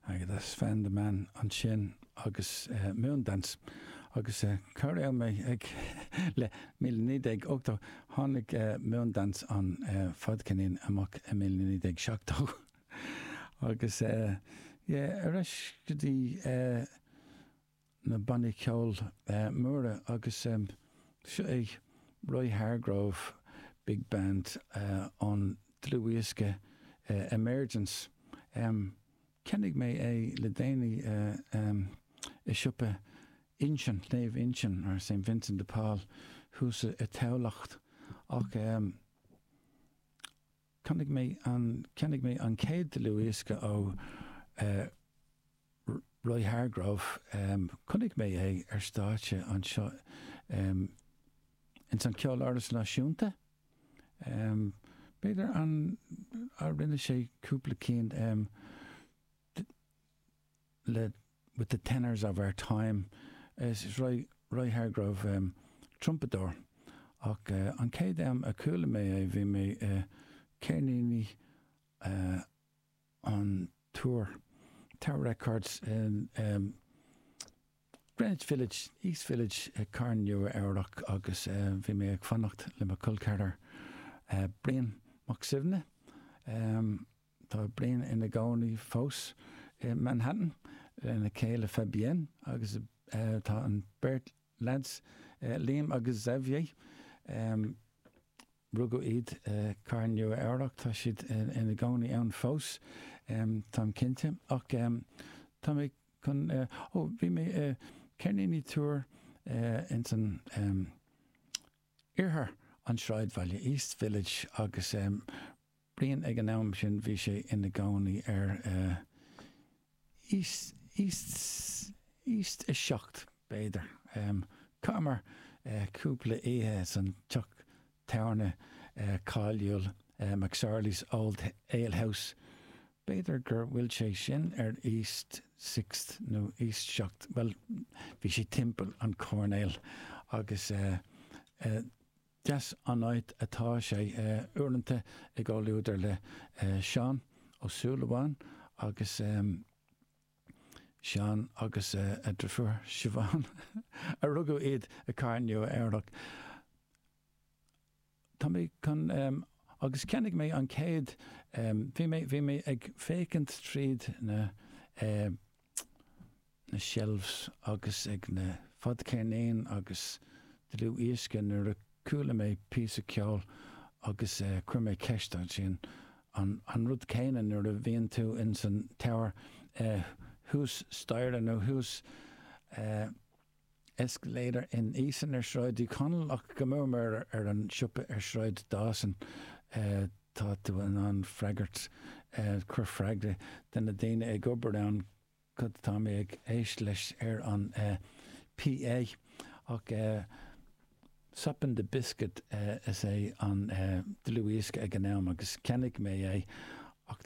I just found the man ansin agus Moondance agus cá raibh mé ag le míle naoi déag ochtó? Tháinig Moondance an fadcheirnín amach i míle naoi déag seachtó agus yeah, ar ais go dtí na bannaí ceoil móra agus seo é Roy Hargrove Big Band ón dlúthdhiosca Emergence. Cheannaigh mé é le déanaí i siopa Uinsionn, Naomh Uinsionn, St Vincent de Paul, thuas i dTamhlacht ach Cheannaigh mé an, cheannaigh mé an chéad dlúthdhiosca ó eh Roy Hargrove, em chonaic mé é ar stáitse anseo em ins an Ceoláras Náisiúnta, em b'fhéidir an a rinne sé cúpla ceann em le, with the tenors of our time', is Roy Hargrove trumpadóir, ach an chéad am a chuala mé é bhí mé i gceirníní an Tour, Tower Records, in Greenwich Village, East Village, i gCathair Nua-Eabhrac agus bhí mé ag fanacht le mo chol ceathrar Brian Mac Suibhne. Tá Brian ina gcónaí fós i Manhattan lena chéile Fabienne agus tá an beirt leaids, Liam agus Xavier, rugadh iad i Cathair Nua-Eabhrac, tá siad ina gcónaí ann fós, tá mé cinnte. Ach tá mé chun, ó, bhí mé i gceirníní an Túir ins an, oirthear an sráidbhaile, East Village, agus Brian ag an am sin, bhí sé ina gcónaí ar East, East 7, b'fhéidir. Chaitheamar cúpla oíche san teach tábhairne cáiliúil McSorley's Old Ale House B'fhéidir gur bhfuil sé sin ar east sixth nó east seacht, bhuel, bhí sé timpeall an choirnéil agus deas an áit atá sé. Uaireanta i gcomhluadar le Seán Ó Súilleabháin agus Seán agus a dheirfiúr Siobhán, a rugadh iad i Cathair Nua-Eabhrac. tá mé chun em. agus cheannaigh mé an chéad em. bhí mé, bhí mé ag féachaint tríd na em. na shelves agus ag na fadcheirnín agus dlúthdhiosca nuair a chuala mé píosa ceoil agus eh. chuir mé ceist ansin, an, an rud céanna nuair a bhíonn tú insan Tower eh. thuas staighre nó thuas eh. Is cléir in Eason ar Shráid Uí Chonaill ach go mór mór ar an siopa ar Shráid Dawson tá tú in ann freagairt, cur freagra, de na daoine ag obair ann, cad atá mé ag éisteacht leis ar an PA? Ach Soppin' the Biscuit is ea an dlúthdhiosca ag an am agus cheannaigh mé é ach